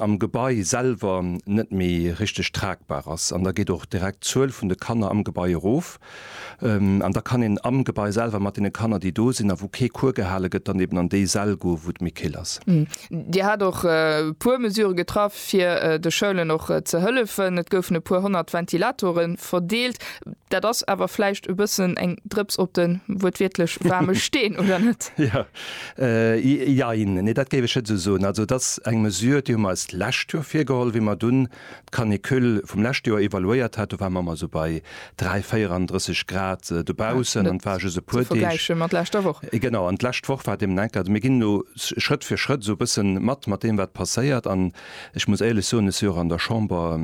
am Gebai selwer net méi richteg tragbar ass an da geet och direkt d'Zuel vun de Kanner am Gebai erof an da kann een am Gebai selwer mat deene Kanner, déi do sinn a wou kee Cours gehale gëtt, dann eben an déi Säll goen, wou et méi kill ass. Dir hat och e puer Mesurë getraff, fir de Schoulen och ze hëllefen. Et goufen e puer honnert Ventilatore verdeelt. Dat ass awer vläicht e bëssen eng Drëps op de wuertwiertlech waarme Steen, oder net? Jein, nee, dat géif ech net esou soen. Also, et ass eng Mesure, déi hu mer eis d'lescht Joer virgeholl, wéi mer dunn d'Canicule vum leschte Joer evaluéiert haten. Do ware mer mol esou bei 3, 34 Grad dobaussen an et war just e puer Deeg. Net ze vergläiche mat leschter Woch. Genau, an d'lescht Woch war deemno enk. Also mir ginn elo Schrëtt fir Schrëtt esou e bësse mat, mat deem, wat passéiert. An ech muss éierlech soen, ech si jo och an der Chamber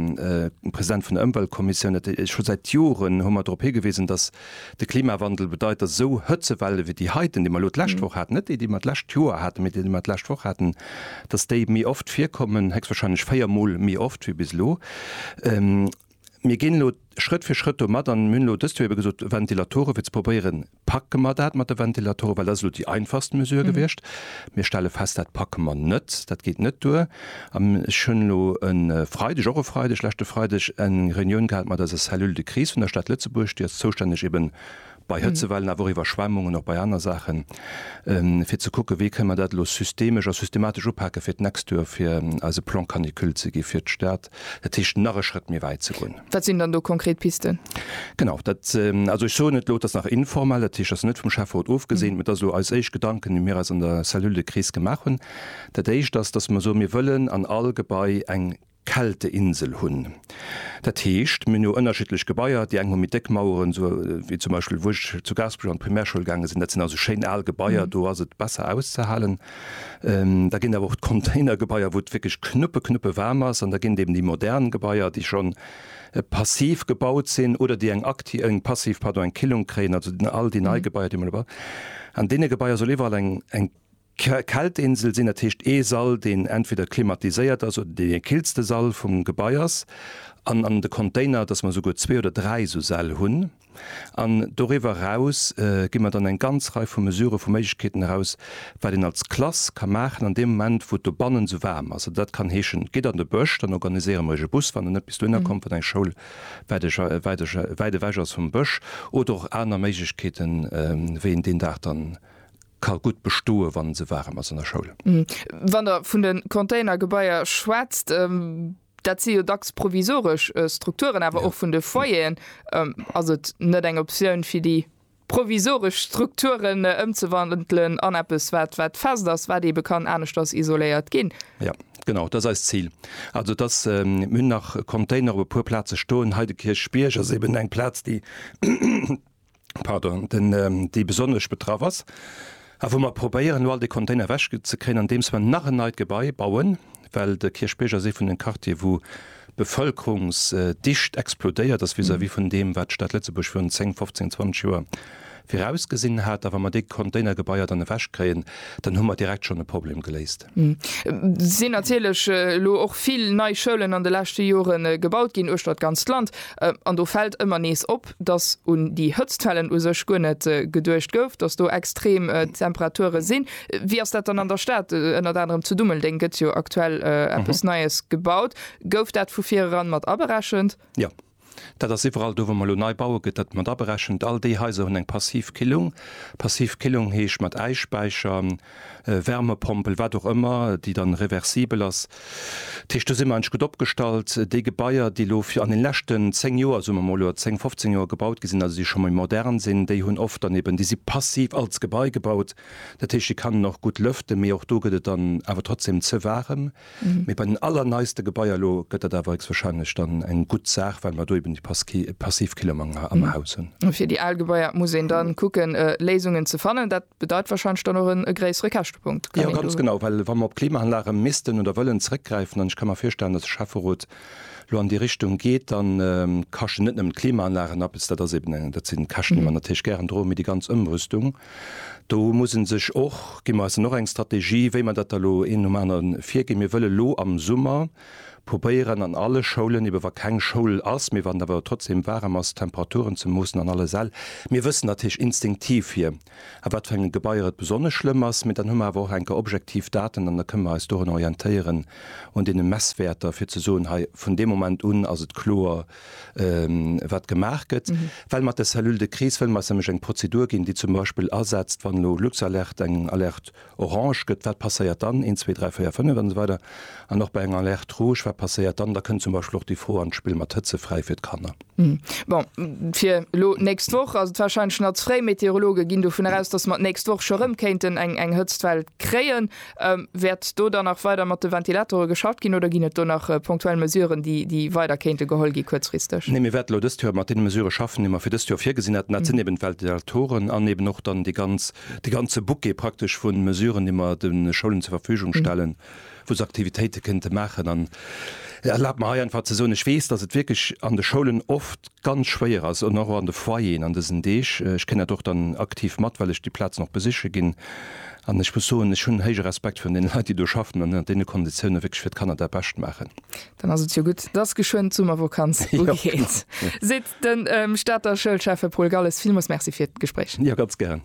President vun der Ëmweltkommissioun, ech hu säit Joren hu mer drop higewisen, dass De Klimawandel bedeit, datt esou Hëtzewelle ewéi déi heiten, déi mer elo d'lescht Woch haten, net déi, déi mer d'lescht Joer haten, mee déi, déi mer d'lescht Woch haten, datt déi méi oft virkommen, héchstwahrscheinlech véier Mol méi oft ewéi bis elo. Mir ginn elo Schrëtt fir Schrëtt do mat an mir hunn elo dëst Joer ebe gesot, Ventilatoren, fir ze probéieren, packe mer dat mat de Ventilatoren, well dat ass elo déi einfachst Mesure gewiescht. Mir stelle fest, dat packe mer net, dat geet net duer. Ech hunn elo e Freideg, och e Freideg, leschte Freideg eng Reunioun gehat mat eiser Cellule de crise vun der Stad Lëtzebuerg, déi ass zoustänneg ebe bei Hëtzewellen, awer och Iwwerschwemmungen, och bei aner Saachen, fir ze kucken, wéi kënne mer dat elo systemesch a systematesch upaken, fir d'nächst Joer, fir eis e Plan canicule ze gi fir d'Stad, Dat heescht nach e Schrëtt méi wäit ze goen. Wat sinn dann do konkret Pisten? Genau, dat, also ech soen et elo, et ass nach informell, dat heescht et ass net vum Schäfferot ofgesinn, mä et ass elo eis éischt Gedanken, déi mir eis an der Cellule de crise gemaach hunn. Dat éischt ass, datt mer soen, mir wëllen an all Gebai eng Kälteinsel hunn. Dat heescht, mir hunn jo ënnerschiddlech Gebaier, déi eng hu méi déck Maueren, esou wéi zum Beispill wou ech zu Gaasperech an d'Primärschoul gaange sinn, dat sinn also schéin al Gebaier, do ass et besser auszehalen. Da ginn awer och d'Containergebaier, wou et wierklech knuppe, knuppe waarm ass. An da ginn et eben déi modern Gebaier, déi schonn passiv gebaut sinn oder déi eng akti-, eng passiv, pardon, eng Killung kréien, also all déi nei Gebaier, déi mer elo. An deene Gebaier soll iwwerall eng, eng Kältinsel sinn, dat heescht ee Sall, deen entweder klimatiséiert ass oder deen dee killste Sall vum Gebai ass. An an de Container, dass mer esouguer zwee oder dräi esou Säll hunn. An doriwwer eraus gi mer dann eng ganz Rei vu Mesurë vu Méiglechkeeten eraus, wat een als Klass ka maachen an deem Moment, wou et dobannen esou waarm ass. Dat kann heeschen, Gitt an de Bësch, dann organiséiere mer iech e Bus, wann en net bis dohinner kommt, wann eng Schoul wäit ewech ass vum Bësch. Oder och aner Méiglechkeeten, wéi een deen Dag dann ka gutt bestoen, wann et esou waarem ass an der Schoul. Wann Der vun de Containergebaier schwätzt, Dat si jo dacks provisoresch Strukturen, awer och vun de Foyeren. Ass et net eng Optioun, fir déi provisoresch Strukturen ëmzewandelen an eppes, wat fest ass, wat eebe kann aneschters isoléiert ginn? Jo, genau, dat ass eist Zil. Also et ass, mir hunn nach Container op e puer Plaze stoen. Hei de Kierchbierg ass eeben eng Plaz, déi. pardon, den, déi besonnesch betraff ass a wou mer probéieren, elo all dee Container ewechzekréien, andeems mer nach en neit Gebai bauen, well de Kierchbierg ass ee vun de Quartiere wou d'Bevëlkerungsdicht explodéiert ass vis-à-vis vun deem, wat d'Stad Lëtzebuerg virun zéng, fofzéng, zwanzeg Joer virausgesinn hat. A wa mer dee Containergebaier dann ewechkréien, dann hu mer direkt schonn e Problem geléist. Et sinn natierlech elo och vill nei Schoulen an de leschte Jore gebaut ginn uechter d'ganzt Land. An do fält ëmmer nees op, datt un déi Hëtztwellen u sech guer net geduecht gouf, datt do extrem Temperature sinn. Wéi ass dat dann an der Stad? Ënnert anerem zu Dummeldeng gëtt jo aktuell eppes Neies gebaut. Gouf dat vu vireran mat aberechent? Jo. Dat ass iwwerall do, wou mer elo nei baue gëtt dat mat aberechent. All déi Haiser hunn eng passiv Killung. Passiv Killung heescht mat Äisspäicher, Wärmepompel, wat och ëmmer, déi dann reversibel ass. Dat heescht do si mer eigentlech gutt opgestallt. Déi Gebaier, déi elo fir an den leschten 10 Joer, soe mer emol, oder 10, 15 Joer gebaut gi sinn, also déi scho méi modern sinn, déi hunn oft dann eben, déi si passiv als Gebai gebaut. Dat heescht, déi kann een och gutt lëften, mee och do gëtt et dann awer trotzdem ze waarem. Mee bei den allerneiste Gebaier elo gëtt dat awer héchstwahrscheinlech dann eng gutt Saach, well mer do eben déi Passivkillermanger am Haus hunn. A fir déi al Gebaier muss een da kucken, Léisungen ze fannen. Dat bedeit wahrscheinlech dann och e gréissere Käschtepunkt. Jo, ganz genau. Well wa mer op Klimaanlage missten oder wëllen zeréckgräifen, an ech ka mer virstellen, datt de Schäfferot elo an déi Richtung geet, da kaschten net nëmmen d'Klimaanlagen eppes. Dat ass eben, dat sinn Käschten, déi mer natierlech gären droen, mee déi ganz Ëmrüstung. Do muss e sech och, gi mer eis dann och eng Strategie, wéi mer dat da elo een nom aneren virginn. Mir wëlle elo am Summer probéieren an alle Schoulen, ebe wa keng Schoul ass, mee wann et awer trotzdeem waarem ass, d'Temperaturen ze moossen an alle Säll. Mir wëssen natierlech instinktiv hier, a wat fir enge Gebaier et besonnesch schlëmm ass, mee dann hu mer awer och enker objektiv Daten an da kënne mer eis dorun orientéieren, un deene Messwäerter, fir ze soen, hei vun deem Moment un ass et kloer, wat gemaach gëtt, well mat der Cellule de crise wëlle mer eis nämlech eng Prozedur ginn, déi zum Beispill asetzt, wann elo Luxalerte eng Alerte orange gëtt, wat passéiert dann, een, zwee, dräi, véier, fënnef an esou weider an och bei enger Alerte rouge, wat passéiert dann. Da kënn zum Beispill och déi Fro an d'Spill mat Hëtzefräi fir d'Kanner. Bon, fir elo d'nächst Woch ass et warscheinlech nach ze fréi. D'Meteorologe ginn dovun eraus, dass mer d'nächst Woch scho rëm kéinten eng Hëtztwell kréien. Wäert do dann nach weider mat de Ventilatore geschafft ginn oder ginn et do nach ponktuell Mesuren, déi weider kéinte geholl gi kuerzfristeg? Nee, mir wäerten elo dëst Joer mat deene Mesurë schaffen, déi mer fir dëst Joer virgesinn haten. Dat sinn eben d'Ventilatoren an eben och dann de ganze Bouquet praktesch vu Mesuren, déi mer de Schoulen zur Verfügung stellen, wou se Aktivitéite kéinte maachen. An erlaabt mer hei einfach ze soen, Ech weess, datt et wierklech an de Schoulen oft, ganz schwéier ass an och an de Foyeren an dësen Deeg. Ech kréien dat och dann aktiv mat, well ech déi Plazen och besiche ginn. An ech muss soen, ech hunn héije Respekt virun deene Leit, déi do schaffen an ënnert deene Konditiounen wierklech fir d'Kanner dat Bescht maachen. Dann ass et jo gutt, dass geschwënn d'Summervokanz ugeet, seet de Stater Schoulschäffe Paul Galles. Villmools Merci fir d'Gespréich. Jo, ganz gären.